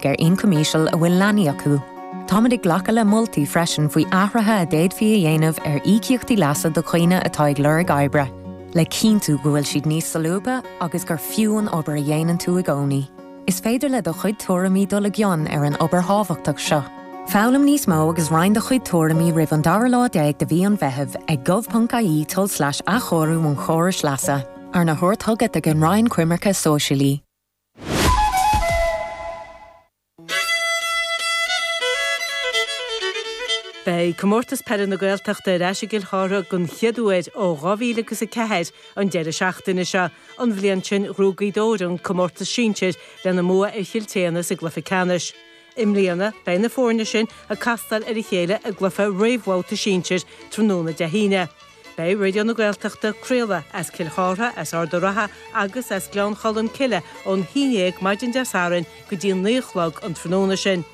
ar ioncam íseal a bhfuil leanaí acu. Táimid ag glacadh le moltaí freisin faoi athruithe a d'fhéadfaí a dhéanamh ar íocaíochtaí leasa do dhaoine atá ag lorg oibre, le cinntiú go bhfuil siad níos solúbtha agus gur fiú an obair a dhéanann tú i gcónaí. Is féidir le do chuid tuairimí dul i gcion ar an obair thábhachtach seo. Foghlaim níos mó agus roinn do chuid tuairimí roimh an dara lá déag de mhí an Mheithimh ag gov.ie tulslais athchóiriú an chórais leasa, arna thabhairt chugat ag an Roinn Coimirce Sóisialaí. Beidh Comórtas Peile na Gaeltachta ar ais i gCill Chartha den chéad uair ó 2004 an deireadh seachtaine seo. An bhliain sin ghnóthaigh Gaoth Dobhair an comórtas sinsir lena mbua ar Chill tSéadhna sa gcluiche ceannais. I mbliana, beidh na foirne sin ag castáil ar a chéile i gcluiche réamhbhabhta sinsir tráthnóna Dé hAoine. Beidh Raidió na Gaeltachta ag craoladh as Cill Chartha, as Ard an Rátha agus as Gleann Cholm Cille ón haon dhéag maidin Dé Sathairn go dtí a naoi a chlog an tráthnóna sin.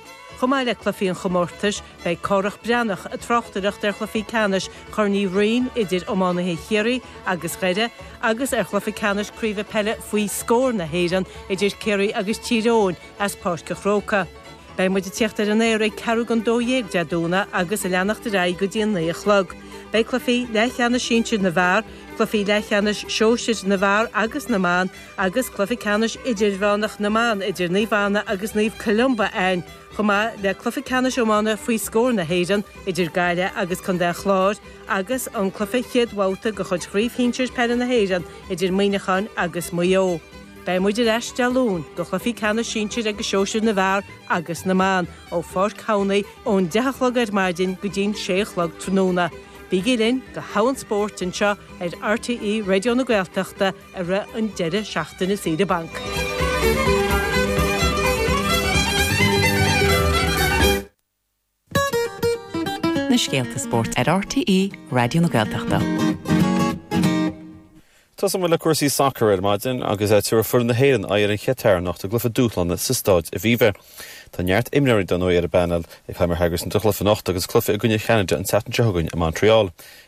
Chomh maith le cluichí an chomórtais, beidh Cárthach Breathnach ag tráchtaireacht ar chluichí ceannais Chorn Mhic Uí Rinn idir iománaithe Chiarraí agus Dhoire agus ar chluiche ceannais craoibhe peile Faoi Scór na hÉireann idir Ciarraí agus Tír Eoghain as Páirc a' Chrócaigh. Beidh muid ag tíocht ar an aer ag ceathrú go 12 Dé Domhnaigh agus ag leanacht ar aghaidh go dtí a naoi a chlog. Beidh cluichí leathcheannais sinsir na bhfear, cluichí leathcheannais sóisir na bhfear agus na mban agus cluiche ceannais idirmheánach na mban idir Naomh Anna agus Naomh Columba ann, chomh maith le cluiche ceannais iomána faoi scór na hÉireann idir Gaillimh agus Contae an Chláir agus an cluiche chéad bhabhta de chuid Chraobh Shinsir Peile na hÉireann idir Muineacháin agus Maigh Eo. Beidh muid ar ais Dé Luain do chluichí ceannais sinsir agus sóisir na bhFear agus na mBan ó Pháirc Thamhnaigh ón 10 a chlog ar maidin go dtí'n 6 a chlog tráthnóna. Bígí linn go hAbhainn Spóirt anseo ar RTÉ Raidió na Gaeltachta i rith an deireadh seachtaine saoire banc. na scéalta spóirt ar RTÉ Raidió na Gaeltachta. Tosóimid le cúrsaí sacair ar maidin agus tabharfaidh foireann na hÉireann aghaidh ar an Chatair anocht i gcluiche dúshláin sa Stáid Aviva. Tá neart imreoirí dar ndóigh ar an bpainéal ag Heimir Hallgrímsson don chluiche anocht agus cluiche i gcoinne Cheanada an tseachtain seo chugainn i Montreal.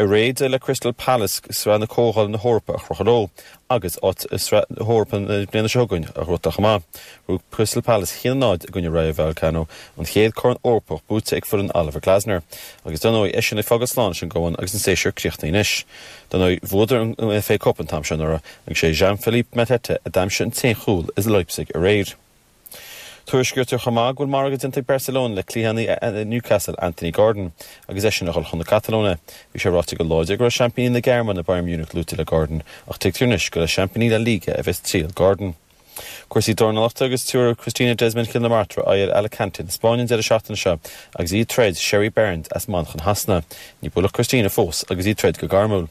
D'éirigh le Crystal Palace sraith na Comhdhála na hEorpa a chrochadh leo, agus áit i sraith na hEorpa na bliana seo chugainn a shroichint amach, ghnóthaigh Crystal Palace haon a náid i gcoinne Rayo Vallecano, an chéad chorn Eorpach buaite ag foireann Oliver Glasner, agus dar ndóigh, eisean ag fágáil slán leis an gCumann agus an séasúr críochnaithe anois. Dar ndóigh, bhuadar an FA Cup an t-am seo anuraidh, agus sé Jean-Philippe Mateta a d'aimsigh an t-aon chúl i Leipzig aréir. Tuairiscítear chomh maith go bhfuil margadh déanta ag Barcelona le cliathánaí Newcastle, Anthony Gordon, agus eisean a dhul chun na Catalóine. Bhí sé ráite go láidir go raibh seaimpíní na Gearmáine, Bayern Munich, luaite le Gordon ach tuigtear anois gur le seaimpíní La Liga a bheas triall Gordon. Cúrsaí dornalachta agus tabharfaidh Christina Desmond Chill na Martra aghaidh ar Alicante na Spáinne an deireadh seachtaine seo agus í ag troid Sherriee Barnes as Manchain Shasana. Ní buaileadh Christina fós agus í ag troid go gairmiúil.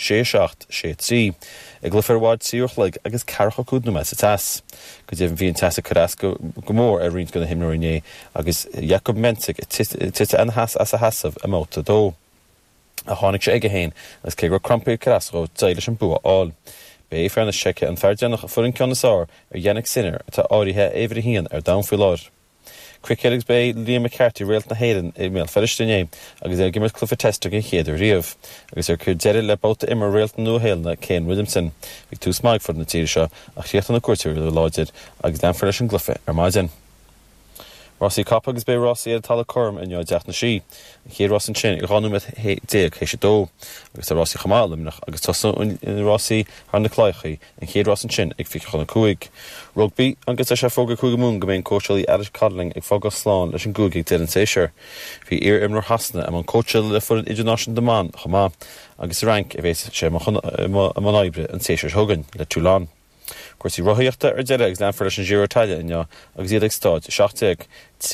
sé seacht, sé trí, i gcluiche a mhair trí uair chloig agus ceathracha cúig nóiméad sa teas. Go deimhin bhí an teas ag cur as go mór ar roinnt de na himreoirí inné agus Jakub Menšík ag titim ina sheas as a sheasamh i mbabhta a dó. Ach tháinig sé chuige féin agus cé go raibh crampaí ag cur as dhó d'éirigh leis an bua a fháil. B'é fear na Seice an fear deireanach a fuair an ceann is fhearr ar Jannik Sinner atá áirithe ar uimhir a haon ar domhan faoi láthair. Cruicéad agus ba é Liam McCarthy réalt na hÉireann i mBéal Feirste inné agus é ag imirt cluiche Test den chéad uair riamh. Agus é ag cur deireadh le babhta imeartha réalt na Nua-Shéalainne Kane Williamson, bhí tús maith ag foireann na tíre seo ach chríochnaigh na cuairteoirí go láidir agus leanfar leis an gcluiche ar maidin. Rásaí capall agus beidh rásaí ar an talamh cothrom inniu i dTeach na Sí, an chéad rás ansin ag 12 nóiméad théis a dó, agus tá rásaí chomh maith i Luimneach agus tosnóidh rásaí thar na clathacha. An chéad rás ansin ag fiche chun a cúig. Rugbaí, agus tá sé fógartha ag Cúige Mumhan go mbeidh an cóitseálaí Alex Codling ag fágáil slán leis an gcúige ag deireadh an tséasúir? Bhí iar-imreoir Shasana i mbun cóitseála le foireann idirnáisiúnta na mban chomh maith agus sa Fhrainc a bheas sé i mbun oibre an tséasúir seo chugainn le Toulon. Cúrsaí rothaíochta, Ar deireadh agus leanfar leis an Giro d'Italia inniu agus iad ag Stáid 17.